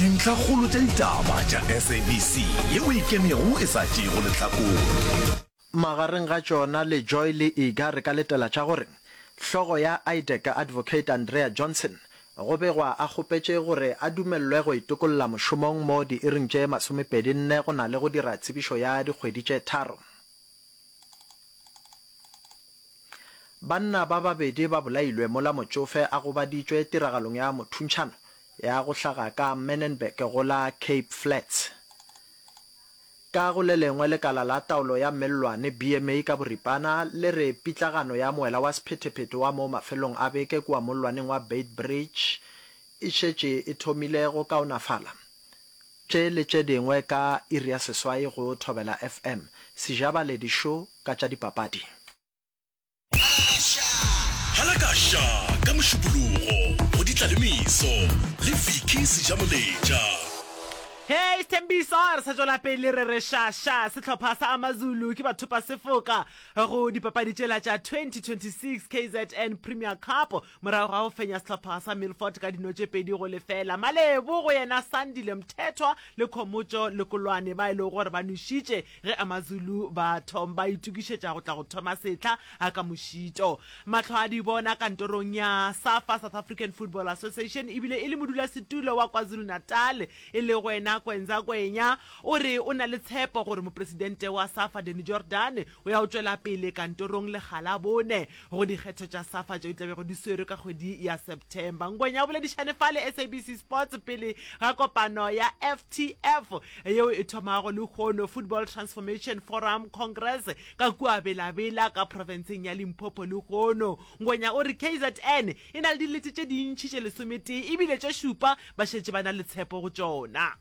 Dintlhakgolo tša ditaba tša SABC ye o ikemego e sa tšeego lehlakore. Magareng ga tšona le Joy le Iga re ka letela tša gore hlogo ya IDEC, Advocate Andrea Johnson, go begwa a kgopetše gore a dumelelwe go itokolla mošomong mo diiring tše masomepedi nne go na le go dira tsebišo ya dikgwedi tše tharo. Banna ba babedi ba bolailwe mola motšofe a gobaditšwe tiragalong ya mothuntšhano ya go hlaga ka Menenberg go la Cape Flats. Ka go le lengwe, lekala la taolo ya mellwane, BMA ka boripana, le re pitlagano ya moela wa sephetephete wa mo mafelong a beke kua mollwaneng wa Beitbridge e šetše e thomile go kaonafala. Tše le tše dingwe ka iri ya seswai go Thobela FM, Sejabale Dišo ka tša dipapadi. Hala ka Sha ka Mošupologo go di tla le meso le Vicky Sejamoletša. Hey Sthembiso re sa tšwela pele re re sha sha sehlopha sa Amazulu ke bathopa sefoka go dipapadi tšela tša 2026 kzn Premier Cup. Morago ga go fenya sehlopha sa Milford ka dino tše pedi go lefela, Malebo go yena Sandile Mthethwa le Khomotšo Lekolwane ba e lego gore ba nwešitše ge AmaZulu ba thom ba itokišetša go tla go thoma sehla a ka mošito. Mahlo a di bona kantorong ya Safa, South African Football Association, ebile e le modulasetulo wa KwaZulu-Natal e lego yena Kwenza Kwenya o re o na le tshepo gore mopresidente wa Safa Danny Jordaan o ya go tšwela pele kantorong lekga la bone. go dikgetho tša safa tšeo di tla bego di swerwe ka kgwedi ya september ngwenya o boledišane fa le sabc sports pele ga kopano ya ftf yeo e thomago lehono football transformation forum congress ka kua belabela ka profenseng ya limpopo lehono ngwenya o re kzn e na le dilete tše dintšhi tše lesometee ebile tše šupa ba šetše ba na le tshepo go tšona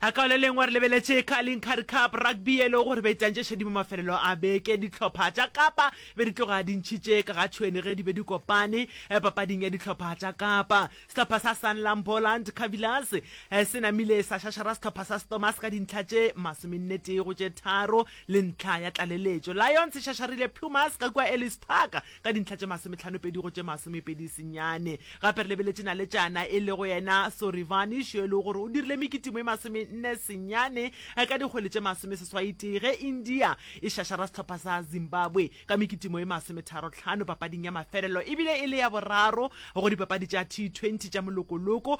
A Ka le lengwe re lebeletše Carling Currie Cup Rugby ye e lego gore be e tantše šedimo mafelelo a beke. Dihlopha tša Kapa be di tloga di ntšhitše ka ga tšhwene ge di be di kopane papading ya dihlopha tša Kapa. Sehlopha sa Sanlam Boland Cavillers se namile sa šašara sehlopha sa Stormers ka dintlha tše masomennetee go tše tharo le ntlha ya tlaleletšo. Lions e šašarile Pumas ka kua Ellis Park ka dintlha tše masometlhanopedi go tše masomepedi senyane. Gape re lebeletše naletšana e lego yena Sorivanish yo e lego gore o dirile mekitimo e masomenne senyane ka dikgwele tše masomeseswaitee ge India e šašara sehlopha sa Zimbabwe ka mekitimo e masometharotlhano papading ya mafelelo e bile e le ya boraro go dipapadi tša T20 tša molokoloko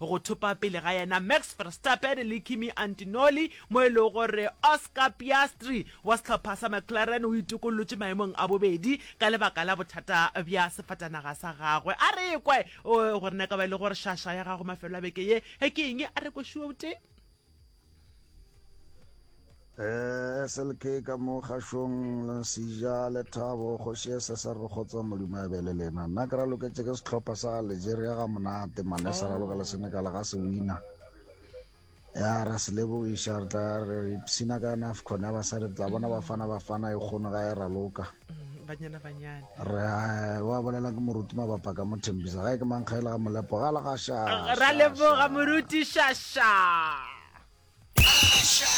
go thopa pele ga yena Max Verstappen le Kimi Antinoli mo e lego gore Oscar Piastri wa sehlopha sa McLaren o itokollotše maemong a bobedi ka lebaka la bothata bja sefatanaga sa gagwe. A re ekwe gore na e ka ba e le gore shasha ya gago mafelo a beke ye ke eng, a re ekwe šuo botee. Eh, slk ka mo kgašong le sija le thabo kgoši e se sa re kgotsa modimo a be le lena nna ke ra loketše ke setlhopha sa algeria ga monate mane sa ra lokela senegala ga se wina ya ra se lebogiša re tla re ipsina ka nafcon ya basadi re tla bona bafana bafana e kgono ga e raloka mm, banyana banyana re eh, wa bolela ke moruti mabapa ka mothembisa ga e ke mankgaela ga molepo ga la ga sha ra leboga moruti shasha